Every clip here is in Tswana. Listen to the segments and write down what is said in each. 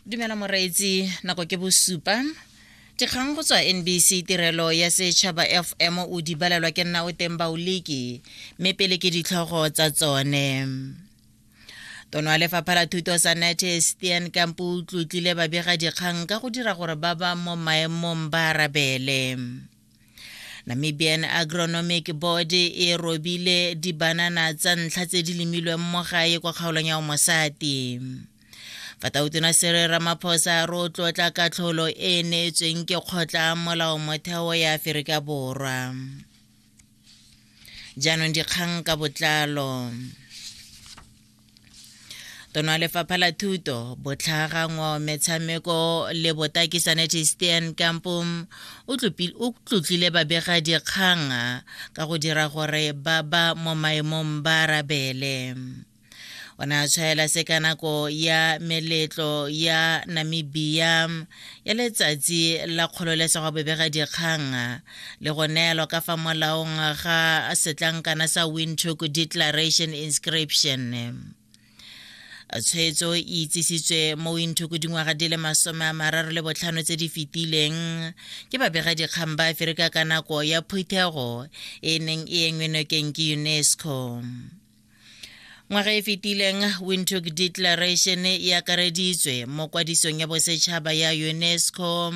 dumela moreetsi nako ke bosupa dikgang go tswa nbc tirelo ya setšhaba fm o di balelwa ke nna o teng baoliki mme pele ke ditlhogo tsa tsone tono ya lefapha la thuto sa nate stian kampo o tlotlile babega dikgang ka go dira gore ba ba mo maemong ba arabele Namibian Agronomic Board e robile dibanana tsa ntlha tse di lemilweng mo gae kwa kgaolong ya Omosati. Fatautona Sere Ramaphosa ro tlotla katlholo e e neetsweng ke kgotla molao motheo ya Aferika Borwa. jaanong dikgang ka botlalo tono ya lefapha la thuto botlhagangwa metshameko le botaki sanete stean kampo o tlotlile babega dikgang ka go dira gore ba ba mo maemong ba arabele o ne a tshwaela se ka nako ya meletlo ya namibia ya letsatsi la kgololesego bebega dikgang le go neelwa ka fa molaong ga setlankana sa windhoek declaration inscription tshwetso e itsisitswe mo windhoek dingwaga di le masome a mararo le botlhano tse di fetileng ke babegadikgang ba aferika ka nako ya phuthego e neng e engwe nokeng ke unesco ngwaga e fetileng windhoek declaration e akareditswe mo kwadisong ya bosetšhaba ya unesco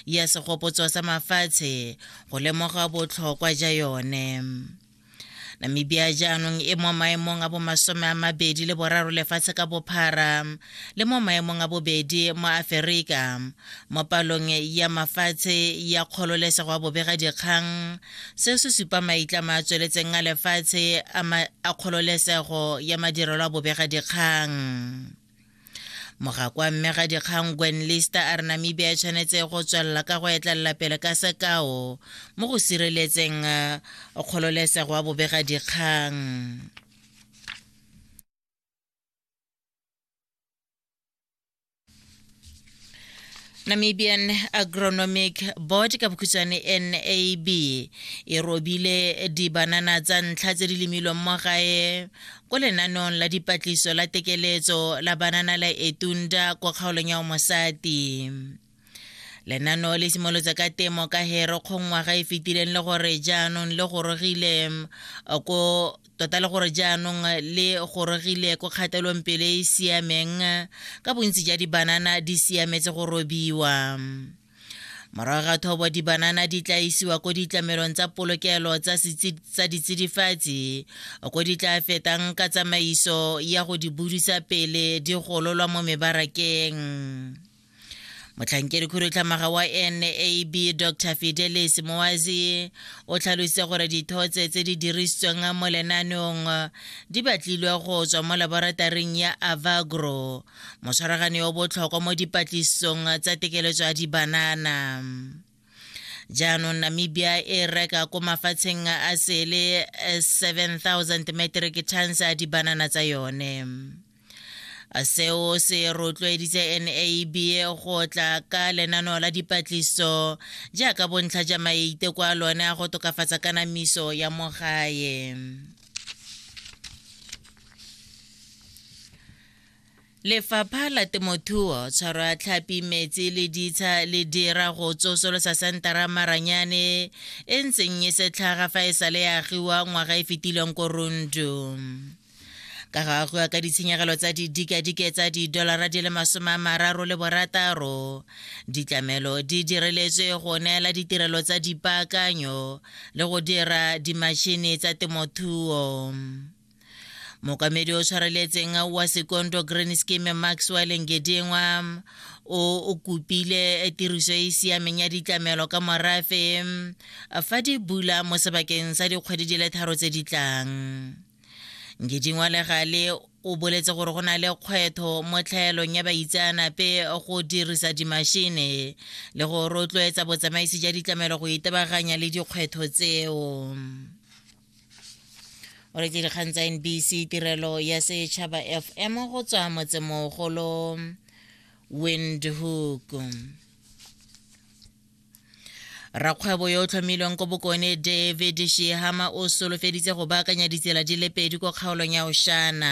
ya segopotso sa mafatshe go lemoga botlhokwa ja yone namibia jaanong e mo maemong a bomasome a mabedi le boraro lefatshe ka bophara le mo maemong a bobedi mo aferika mo palong ya mafatshe ya kgololesego ya bobegadikgang seo se supa maitlamo a tsweletseng a lefatshe a kgololesego ya madirelo a bobegadikgang mogakwa mme ga dikgang gwen lister a re namibia e tshwanetse go tswelela ka go etlelela pele ka sekao mo go sireletseng eh, kgololesego ya bobegadikgang Namibian Agronomic Board ka bokhutshwane NAB e robile dibanana tsa ntlha tse di lemilweng mo gae ko lenaneong la dipatlisiso la tekeletso la banana la Etunda kwa kgaolong ya Omosati. lenaneo le simolotse ka temo ka hero kgongwaga e fetileng le gore jaanong le gorogile ko tota le gore jaanong le gorogile ko kgatelong pele e siameng ka bontsi ja dibanana di siametse go robiwa morago ga thobo dibanana di tla isiwa ko ditlamelong tsa polokelo tsa ditsidifatsi ko di tla fetang ka tsamaiso ya go di budisa pele di gololwa mo mebarakeng motlhankedi khudutlhamaga wa nab dr fidelis moazi o tlhalositse gore dithotse tse di dirisitsweng mo lenaneong di batlilwe go tswa mo laborataring ya avagro motshwaragane yo botlhokwa mo dipatlisisong tsa tekeletso ya dibanana jaanong namibia e reka ko mafatsheng a sele 7000 eh, metric tons a dibanana tsa yone seo se rotloeditse nab go tla ka lenaneo la dipatliso jaaka bontlha ja maite kwa lone a go tokafatsa kanamiso ya mo gae Lefapha la Temothuo, Tshwaro ya Tlhapi, Metsi le Ditsha le dira go tsosolosa sentara Maranyane e ntseng e setlhaga fa e sale ya agiwa ngwaga e fetileng ko Rundu. Ka go agiwa ka ditshenyegelo tsa didikadike tsa didolara di le masome a mararo le borataro, ditlamelo di direletswe go neela ditirelo tsa dipaakanyo le go dira dimashini tsa temothuo. mokamedi o tshwareletseng wa sekondo green scheme maxwell ngedingwa o kopile tiriso e e siameng ya ditlamelo ka morafe fa di bula mo sebakeng sa dikgwedi di le tharo tse di tlang ngedingwa le gale o boletse gore go na le kgwetho mo tlhaelong ya baitseanape go dirisa dimashine le go rotloetsa botsamaisi ja ditlamelo go itebaganya le dikgwetho tseo o re dikgang tsa nbc tirelo ya setšhaba fm go tswa motsemogolo windhoek rakgwebo yo o tlhomilweng ko bokone david shehama o solofeditse go baakanya ditsela di le pedi ko kgaolong ya oshana